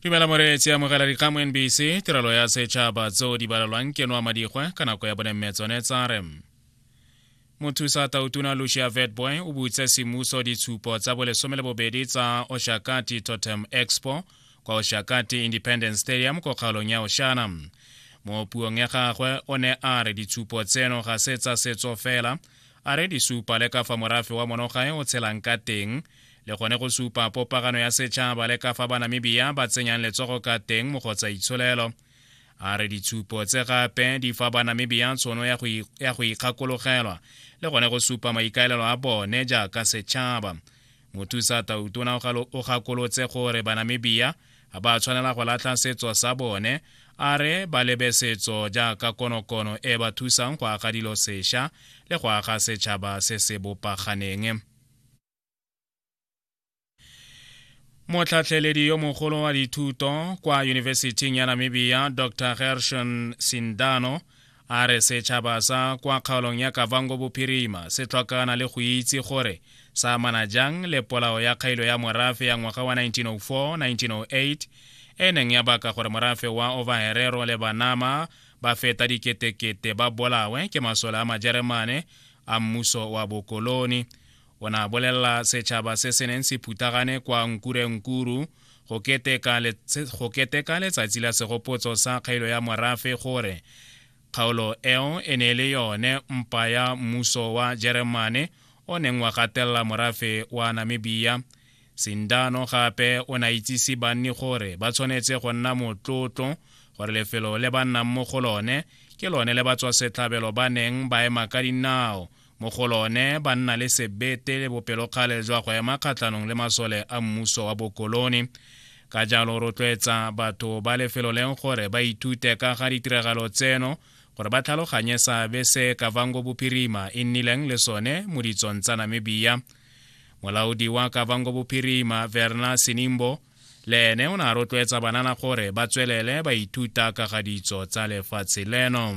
dumela moreetsi amogela dikgang mo nbc tirelo ya setšhaba tseo di balelwang ke noa madigwe ka nako ya bonemme tsone tsa re mothusa tautuna lucia vetboy o butse semmuso ditshupo tsa bolesome le bobedi tsa oshakati totem expo kwa oshakati independence stadium ko kgaolong ya oshana mo puong ya gagwe o ne a re ditshupo tseno ga se tsa setso fela a re di supa le ka fa morafe wa monogae o tshelang ka teng le gone go supa popagano ya setšhaba le ka fa banamibia ba tsenyang letsogo ka teng mo go tsa itsholelo a re ditshupo tse gape di fa banamibia tshono ya go ikgakologelwa le gone go supa maikaelelo a bone jaaka setšhaba mothusa tautona o gakolotse gore banamibia ga ba tshwanela go latlha setso sa bone a re ba lebe setso jaaka konokono e ba thusang go aga dilo sešwa le go aga setšhaba se se bopaganeng motlhatlheledi yo mogolo wa dithuto kwa yunibesithing ya namibia dr gershon sindano a re setšhaba sa kwa kgaolong ya kavango bophirima se tlhokana le go itse gore sa amana jang le polao ya kgailo ya morafe ya ngwaga wa 1904-1908 e neng ya baka gore morafe wa ovaherero le banama ba feta diketekete ba bolawe ke masole a majeremane a mmuso wa bokoloni o ne a bolelela setšhaba se se neng se phuthagane kwa nkurenkuru go keteka letsatsi la segopotso sa kgailo ya morafe gore kgaolo eo e ne e le yone mpa ya mmuso wa jeremane o neng wa gatelela morafe wa namibia sindano gape o ne a itsise banni gore ba tshwanetse go nna motlotlo gore lefelo le ba nnang mo go lone ke lone le batswasetlhabelo ba neng ba ema ka dinao mo go lone ba nna le sebete le bopelokgale jwa go ema kgatlhanong le masole a mmuso wa bokolone ka jalo rotloetsa batho ba lefelo leng gore ba ithute ka ga ditiragalo tseno gore ba tlhaloganye seabe se kavango bophirima e nnileng le sone mo ditsong tsa namibia molaodi wa kavango bophirima verna sinimbo le ene o ne a rotloetsa banana gore ba tswelele ba ithuta ka ga ditso tsa lefatshe leno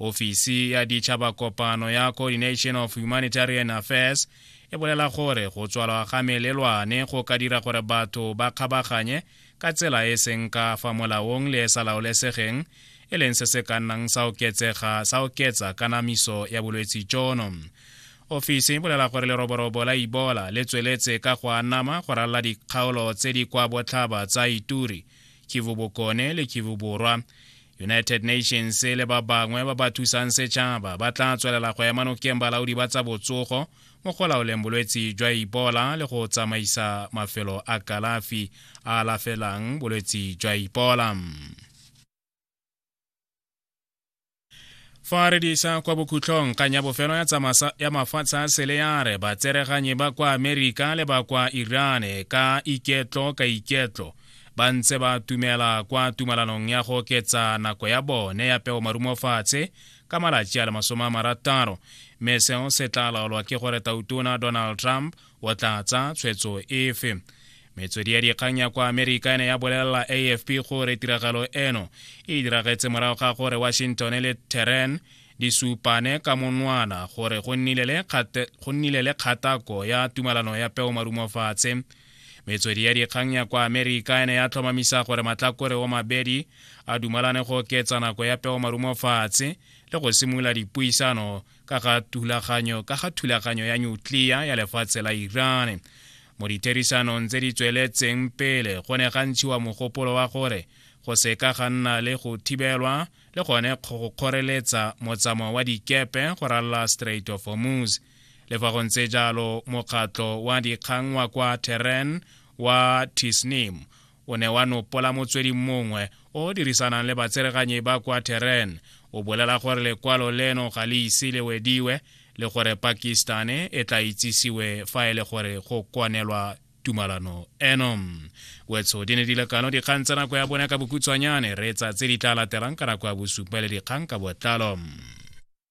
ofisi ya ditšhaba kopano ya coordination of humanitarian affairs e bolela gore go tswalwa ga melelwane go ka dira gore batho ba kgabaganye ka tsela e seng ka fa molaong le e sa laolesegeng e leng se se ka nnang sa oketsega sa oketsa kanamiso ya bolwetse jono ofisi e bolela gore leroborobo la ibola le tsweletse ka go anama go ralla dikgaolo tse di kwa botlhaba tsa ituri kivu bokone le kivu borwa united nations le ba bangwe ba ba thusang setšhaba ba tla tswelela go ema nokeng balaodi ba tsa botsogo mo go laoleng bolwetse jwa ipola le go tsamaisa mafelo a kalafi a alafelang bolwetse jwa ipola fa re disa kwa bokhutlhong kgang ya bofelo ya mafatshe a sele ya re batsereganyi ba kwa amerika le ba kwa irane ka iketlo ka iketlo ba ntse ba tumela kwa tumalanong ya go oketsa nako ya bone ya peo marumofatshe ka malatsi a le masome a marataro mme seo se tla laolwa ke gore tautona donald trump o tla tsa tshwetso efe metswedi ya dikgang ya kwa amerika ene ya bolelela afp gore tiragalo eno e diragetse morago ga gore washington le tehran di supane ka monwana gore go nnile le kgatako ya tumalano ya peo marumofatshe metswedi ya dikgang ya kwa amerika e ne ya tlhomamisa gore matlakore o mabedi a dumalane go oketsa nako ya peo marumo fatshe le go simolola dipuisano ka ga thulaganyo ka ga thulaganyo ya nyuklia ya lefatshe la iran mo ditherisanong tse di tsweletseng pele go ne ga ntshiwa mogopolo wa gore go seka ga nna le go thibelwa le gone go kgoreletsa motsamao wa dikepe go ralala strait of hormuz le fa go ntse jalo mokgatlho wa dikgang wa kwa teren wa tisnim o ne wa nopola motswedi mongwe o o dirisanang le batsereganyi ba kwa teren o bolela gore lekwalo leno ga le ise le wediwe le gore pakistane e tla itsisiwe fa e le gore go kwanelwa tumalano eno wetso di ne di lekano dikgang tsa nako ya bone ka bokhutshwanyane re tsa tse di tla latelang ka nako ya bosupa le dikgang ka botlalo